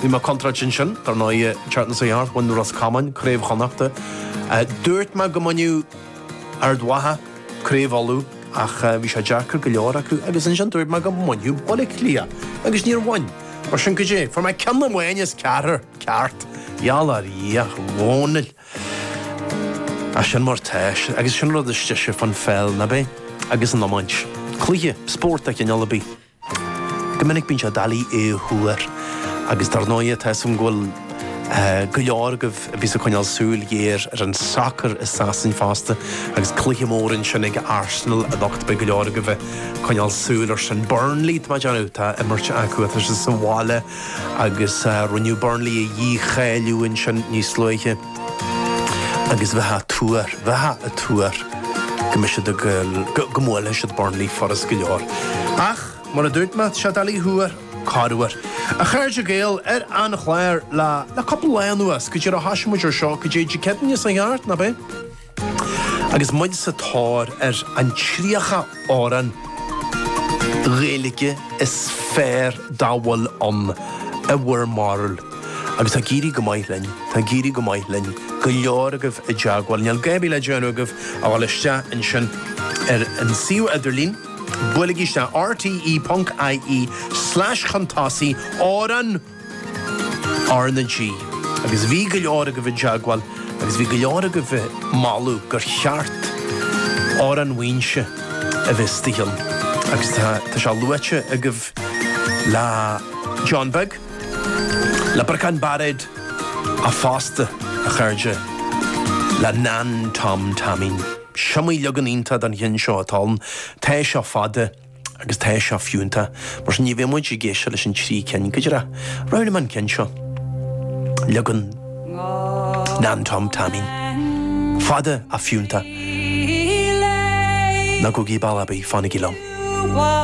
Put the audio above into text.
Bhí mé contráilte ansin, dar ndóigh. An tseachtain seo chuaigh thart, bhain Ros Comáin Craobh Chonnacht. Dúirt mé go mbainfeadh Ard Mhacha Craobh Uladh ach bhí sé deacair go leor acu agus ansin dúirt mé go mbainfeadh Baile Átha Cliath agus níor bhain. Mar sin goidé? Fuair mé ceann amháin as ceathrar ceart, gheall ar Dhia, a Dhónaill. Ach sin mar tá sé agus sin rud is deise faoin pheil, nab ea? Agus an iomáint. Cluiche, spórt de chineál ar bith. Go minic bíonn sé doiligh é a thuar agus dar ndóigh tá 'fhios agam go bhfuil go leor agaibh a bhíos ag coinneáil súil ghéar ar an sacar i Sasain fosta agus cluiche mór ansin ag Arsenal anocht. Beidh go leor agaibh ag coinneáil súil ar sin. Burnley, tá mé ag déanamh, tá imirt acu, tá siad sa bhaile agus rinneadh Burnley a dhícháiliú ansin níos luaithe. agus bheifeá a' tuar, bheifeá a' tuar go mbeidh siad ag, go, go mbuailfidh siad Burnley furast go leor. Ach, mar a dúirt mé, tá sé doiligh a thuar, corruair. A chairde Gael, ar an chlár le, le cúpla lá anuas, go díreach, thoisigh muid ar seo, goidé, Dé Céadaoine seo chuaigh thart, nab ea? Agus muid sa tóir ar an 30 amhrán Gaeilge is fearr dá bhfuil ann i bhur mbarúil, agus tá ag éirí go maith linn, tá ag éirí go maith linn, go leor agaibh i dteagmháil, níl a dhath ar bith le déanamh agaibh ach dul isteach ansin ar an suíomh idirlín, buailigí isteach, rte. ie slash chun tosaigh, amhrán! R na G agus bhí go leor agaibh i dteagmháil agus bhí go leor agaibh ag moladh gur cheart Amhrán Mhaínse a bheith istigh ann agus tá sé luaite agaibh le John Beag, le Breacán Bairéad fosta, a chairde, le Nan Tom Taimín. S'iomaí leagan iontach den cheann seo atá ann, tá sé fada, agus tá sé fiúntach, mar sin ní bheidh muid ag éisteacht leis an trí cinn, go díreach. Roghnaigh mé an ceann seo. Leagan Nan Tom Taimín. Fada, fiúntach. Ná gabhaigí bealach ar bith, fanaigí liom.